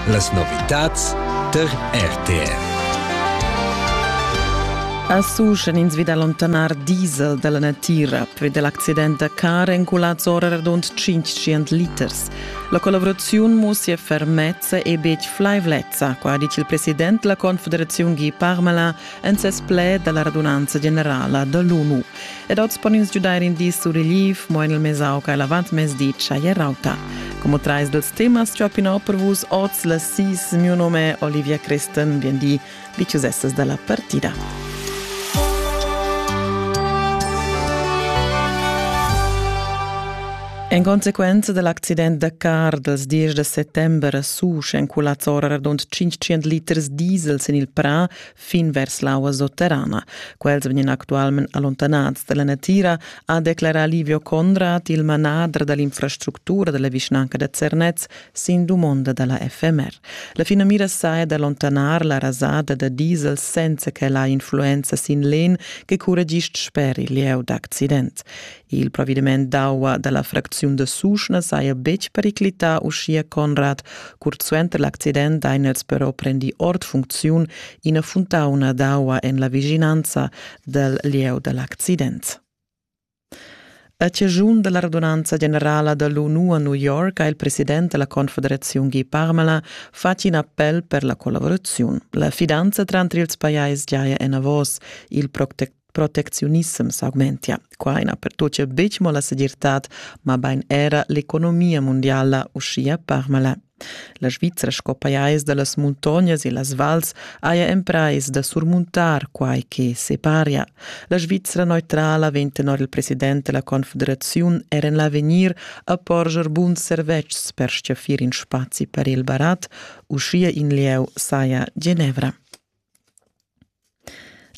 Las novitads tar RTR. A Susch en ins vi da lontanar diesel dalla natira per dell accident da car enculats ora radund 500 liters. La collaboraziun mussia fermezza e betg flaivlezza, qua ha dit il president della Confederaziun Guy Parmelin en ses pled da la radunanza generala da l'ONU. Ed oz pon ins giudair in di sur relief, mo en il mesauc a l'avantmezdi tschajè rauta. Como trais dels temas ciopinò per vus oz la sis. Mio nome Olivia Christen, bien di, diciusessas dalla partida. En consequenza dell'accident da car dels dies de settembre a Susch, en cul azzora radund 500 liters diesel sin il Prà, fin vers l'aua sotterrana. Quels vegnan actualment allontanads dalla natira, ha declarà Livio Conrad, il manader dall'infrastructura dalla vischnanca da Zernez, sin dumonda dalla FMR. La finamira saja d'allontanar la rasada da diesel senza che ella ha influenza sin l'en che curregist sper il lieu d'accident. Il provediment d'aua dalla fracziun da Suschna saja betg periclità, uschia Conrad. Curt suenter l'accident ein els però prendi ord funcziun ina funtauna d'aua en la vischinanza dal lieu da l'accident. A ciagiun della radunanza generala da l'ONU a New York ha il president della Confederazione Guy Parmelin fatg in appel per la collaborazione. La fidanza tranter ils pajais giaja enavos. Il protect protecziunissem s'augmentia. Qua ina pertuccia betg mo la segirtad, ma bain era l'economia mondiala uschia parmala. La Svizra sco pajais da las muntognas e las vals haja emprais da surmuntar quai che separia. La Svizra neutrala vegn tenor il president della Confederaziun er en l'avegnir a porscher buns servetschs per stgaffir in spazi per il barat, uschia in lieu saja Genevra.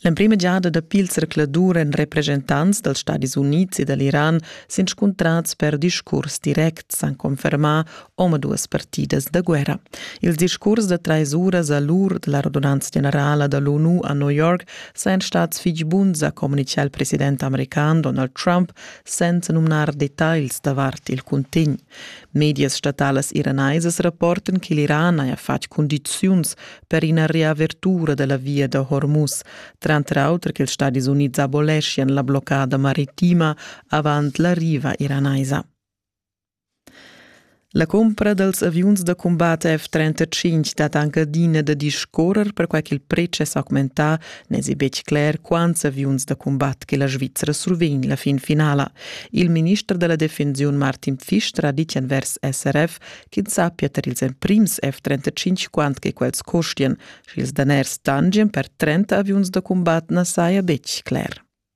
L'emprima giada dapi il zercladur èn represchentants dals Stadis Unids e da l'Iran s'inscuntrads per discurs directs, han confermà omaduas partidas da guerra. Ils discurs da trais uras a l'ur da la radunanza generala da l'ONU a New York sajan stads fitg buns, ha communitgà il president american Donald Trump senza numnar detagls davart il cuntegn. Medias statalas iranaisas rapportan che l'Iran haja fatg cundiziuns per ina reavertura da la via da Hormuz, tranter auter ch'ils Stadis Unids aboleschian la bloccada maritima avant la riva iranaisa. La cumpra dals aviuns da cumbat F-35 dat anc adina da discorrer perquai ch'il pretsch è s'augmentà N'èsi betg cler quants aviuns da cumbat che la Svizra survegn la fin finala. Il minister da la defensiun Martin Pfister ha ditg envers SRF ch'ins sappia tar ils emprims F-35 quant che quels costian, sch'ils daners tangien per 30 aviuns da cumbat na saja betg cler.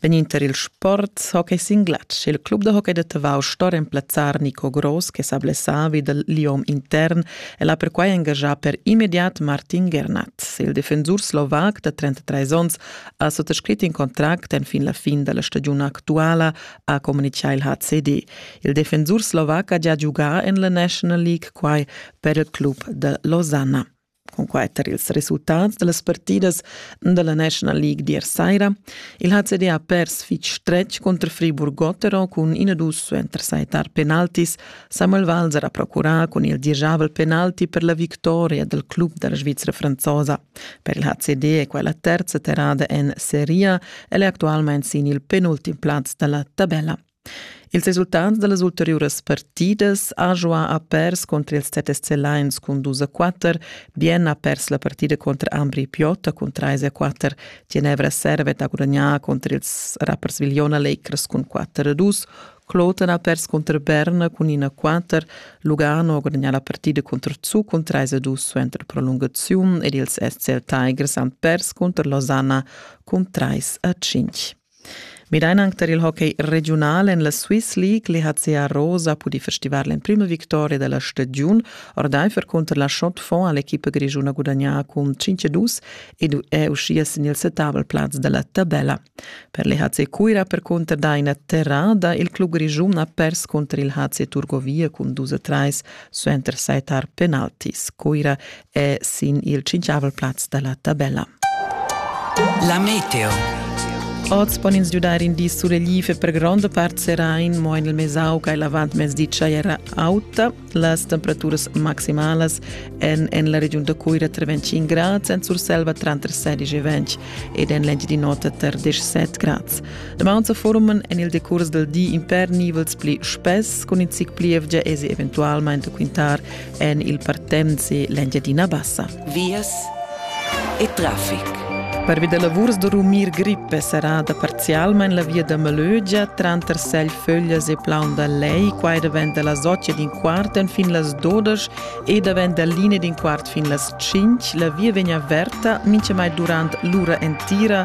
Vegnind tar il sport hockey sin glatsch il club da hockey da Tavau sto remplazzar Nico Gross che sa blessà vi dal liom intern. El ha perquai engaschà per immediat Martin Gernat. Il defensur slovac da 33 onns ha suttascrit in contract enfin la fin da la stagiun actuala, ha communitgà il HCD. Il defensur slovac ha già giugà en la National League quai per il club da Losanna. Cunquai tar ils resultats da las partidas da la National League d'ier saira. Il HCD ha pers fitg stretg cunter Friburg-Gotteron cun ina dus suenter saitar penaltis. Samuel Walser ha procurà cun il dirigiabel penalti per la victoria dal club da la Svizra franzosa. Per il HCD è quella terza terrada en Serie. El è actualmain sin il penultim plaz da la tabella. Ils resultats da las ulteriuras partidas Ajoa ha pers cunter ils Tetesce Lions cun dus a quatter, Bien ha pers la partida cunter Ambri Piota cun trais a quatter, Ginevra Servet ha gudagnà cunter ils Rapperswil-Jona Lakers cun quatter a dus, Kloten ha pers cunter Berna cun in a quatter, Lugano ha gudagnà la partida cunter Zug cun trais a dus suenter prolungaziun ed ils SCL Tigers han pers cunter Losanna cun trais a cinq. Midain anc tar il hockey regiunal en la Swiss League. L'EHCA Rosa ha pudì festivar l'emprima victoria da la stagiun ordaifer cunter la Schotfond ha l'equipa grischuna gudagnà cun 5-2 ed è uschia sin il setavel plaz da la tabella. Per l'EHC Cuira percunter daina terrada. Il club grischun ha pers cunter il HC Turgovia cun 2-3 suenter sai tar penaltis. Cuira è sin il tschintgavel plaz da la tabella. La meteo. Oz pon ins giudar in di sulegl e per gronda part serain, mo en il Mesau ca l'avantmezdi era auta. Las temperaturas maximalas en, en la regiun da Cuira tra 25 grads, en Surselva tra 16 e 20 ed en l'engi di nota tra 17 grads. De Mount forumen en il decurs del di in per nivels pli spess, con in zic pli evgia esi eventualmente quintar en il Partenzi l'Engiadina Bassa. Vias e traffic. Pervi da lavurs da rumir grippe sarà da parzialmain la via da Malögia tranter Seilföglias e Plaun da Lei, quai davent da las 8 d'in quart fin las 12 e davent da linea d'in quart fin las 5. La via vegn averta mintgamai durant l'ura entira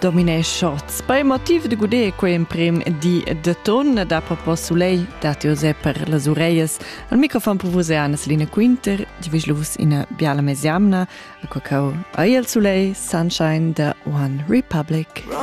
dominé Schatz. Per il motiv de gudé quei emprim di de ton da propos Soleil dat José per las ureias. Al microfon per vos è Anna-Selina Quinter, di vislus ina biala mesiamna, a quacau a il Soleil, Sunshine de One Republic. Run